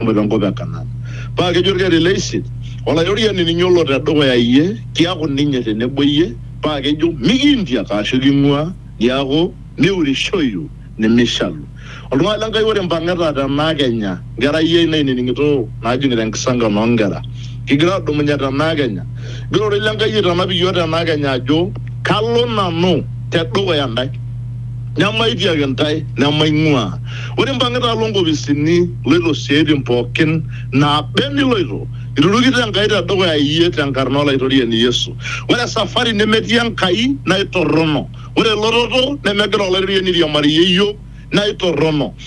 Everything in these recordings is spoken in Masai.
Ore te nkop e Kanaan. Paa kejo olkereri le isiet, Olaitoriani ninye olo te dukuya iyie, kiaku ninye te nebo iyie, paa kejo, Mikiintiak aashu king'uaa, niaku miurishoyu nimishalu. Oltung'ani le Nkai ore impang'ita te naa kenya, nkerai ai nainining'ito naajing'ita enkisankan oo nkera, kigira aadumunye te naa kenya, egira ororei le Nkai aitanap iyiook te naa kenya ajo, Kalo nanu te dukuya intae. Nemaitiaki intae nemaing'uaa. Ore impang'ita alo nkopisini iloito isiaaitin pookin naaba eniloito, iturukito Enkai te dukuya iyie te nkarna o Laitoriani Yesu. Ore esafari nemetii Enkai naa eitorrono. Ore elototo nemegira Olaitoriani airiamariyie iyiook naa eitorrono.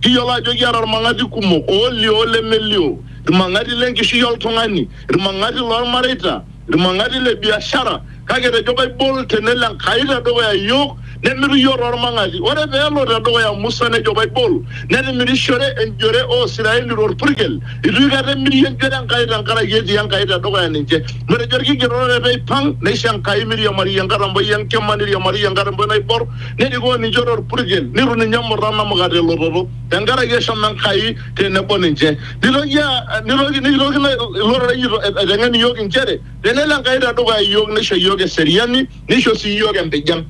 Kiyiolo ajo kiata ilmang'ati kumok, oolio o lemelio, ilmang'ati le nkishui o ltung'ani, ilmang'ati loo lmareita, ilmang'ati le biashara, kake etejo Baibol te nelo Enkai te dukuya iyiook nemitu iyiook too lmang'ati. Ore pee elo te dukuya Musa nejo Baibol netimirishore enjore oo Siraeli to lpurkel. Eitu aikata emiri enjore Enkai te nkaraki etii Enkai te dukuya ninche. Netejo Ilkigerot ore pee eipang neisho Enkai meiriamariyie enkatampo e nkima neiriamariyie enkatampo e naibor. nerikoo ninche torpurkel nitu ninye emurra namuka telototo tenkaraki eshomo Enkai tenebo ninche nitoki aa- nitoki nitoki ina- ilo rorei ito- aiteng'en iyiook inchere tenelo Enkai tedukuya iyiook nisho iyiook eseriani nisho sii iyiook empijan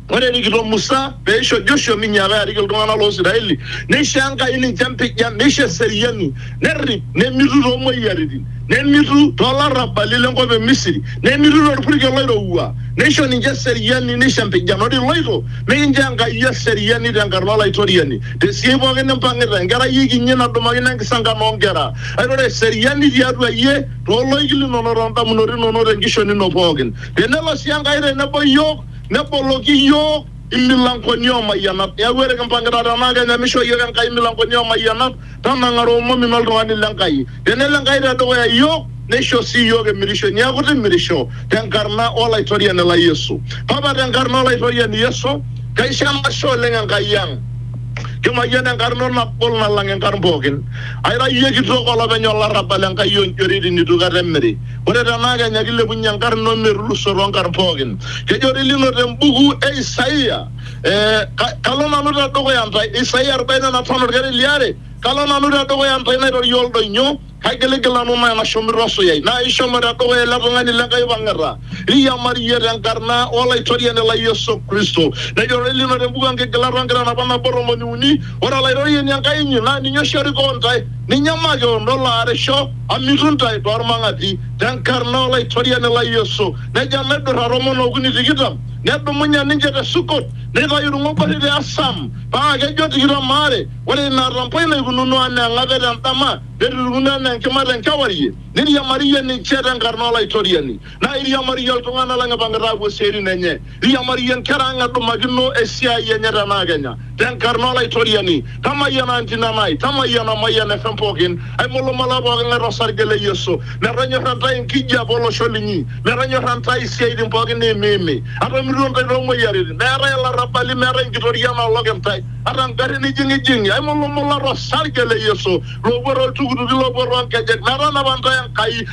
ore erikito Musa peisho Joshua minyiaka arik iltung'anak loo Isiraeli neisho Enkai ninche empijan neisho eseriani nerrip nemitu too moyiaritin nemitu too larrabali lenkop e Misiri nemitu tolpurkel oirowua neisho ninche eseriani neisho empijan ore iloito mikinchoo Enkai eseriani tenkarna Olaitoriani tesiai pooki nimpang'ita enkerai e kinyi nadumakino enkisankan oo nkera kake ore eseriani tiatua iyie too loik linono too ndamunot inono tenkishon ino pooki tenelo sii Enkai tenebo iyiook neboloki iyiook imilankoni oo mayianat. Neaku ore kimpang'ita tenaa kenya meishoo iyiook Enkai imilankoni oo mayianat, tanang'ara omom ino oltung'ani le Nkai. Tenelo Enkai te dukuya iyiook, neisho sii iyiook emirishoi. Neaku timirisho te nkarna o Laitoriani lai Yesu. Papa te nkarna o Laitoriani Yesu, kaisho enashe oleng Enkai ang. Kimayian enkarna ino nagol nalang inkarn pooki. Aira iyie kitok olopeny olarrabal Enkai oo njoritin neitu kata emiri. Ore tenaa kenya keilepunye enkarna o metuluso too nkarn pooki. Kejo doi lino te mbuku e Isaia, ee, Kalo nanu te dukuya intae, Isaia arobaini o napishana olkereri li are, Kalo nanu te dukuya intae nairorie oldoinyo, kaigiligil nanu ntae nashum irrosoi, naa ishomo te dukuya ele tung'ani le Nkai oipang'ita, riamariyie te nkarna o Laitoriani lai Yesu Kristo. Nejo doi lino te mbuku o Nkigilat o Nkitanapat nabo tomoni uni, Ore Olaitoriani Enkai inyi naa ninye oshi orikoo intae, ninye makewon olo aarisho, Amitu ntae too lmang'ati, te nkarna o Laitoriani lai Yesu. Nejo enaidurra tomon o okuni tikitam, nedumunye ninche te Sukot, neitayu ilng'oborri te Asam, paa kejo tikitam aare, Ore ina atampo ino eikununo anaa eng'ape te ndama, netirriuno anaa enkima te nkewarie, neiriamariyie ninche te nkarna o Laitoriani. Naa iriamariyie iltung'ana lang ipang'ita aapuo isiaaitin enye, iriamariyie nkera ang edumakino esiaai enye te naa kenya. Te nkarna o Laitoriani, tamayiana Antina Nai, tamayiana Mayian FM pooki, aimulumula pooki ng'ae to sarge le Yesu. Metonyorra intae enkijiape o losho linyi, metonyorra intae isiaaitin pooki niimiimi. Atomiruo intae too moyiaritin, meetae ilarrabali, meetae inkitoria naolok intae, ata ngarrin ijing'ijing'i, aimulumula to sarge le Yesu. Loopuo too ltukutuki, loopuo too nkejek, metanapa intae Enkai.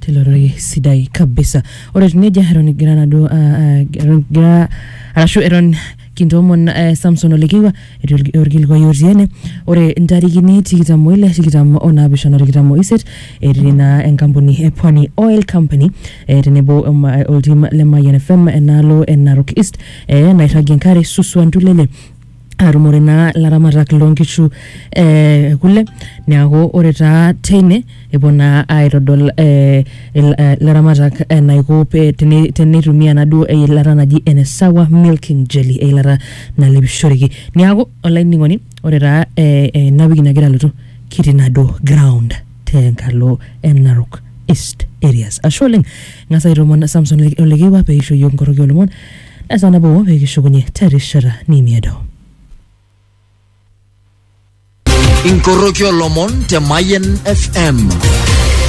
tilo rorei sidai kabisa ore etiu nejia eton egira naduo ah, ah, eton egira arashu eton kintoomon eh, samson olekiwa etii orki- orkilikuai otii ene ore intarikini tikitam oile tikitam onaapishana tikitam oiset etii naa enkampuni e pwani oil company eh, tenebo oma- oltim le mayian fm enaalo e narok east eh, nairragie enkare suswa ntulele atumore naa ilaramatak loonkishu eh, kule niaku ore taa teine epuo naa aitodol eh, il- eh, ilaramatak enaiko pe- tene- teneitumia enaduo eilata naji ene sawa milking jelly eilata nalepishoreki niaku olainining'oni ore taa eh, eh, ena wiki nagira alotu kitii naduo ground tenkalo e narok east areas ashe oleng ng'as aitomon samson Ole- olekewa peisho yiok nkoroki olomon Esaa nabo pee kishukunye terishata nemeedo. Inkoroki olomon te Mayen FM.